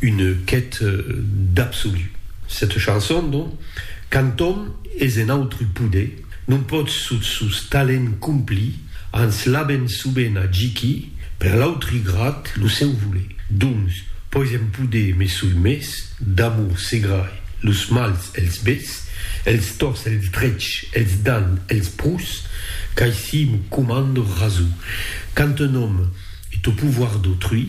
Une quête d'absolut. Cette chanson, donc, quand òm es en autre pode, non pòt sot sos talents complir, ans l'abèn soben a giqui per l'autri grat lo seu voler. Doncs, pòis en pode me soi mes, d'amor se grai, los mals els bes, els tors els drech, els dan, els prus, qu'aicí m'o comando raso. Quand un òm est au pouvoir d'autrui,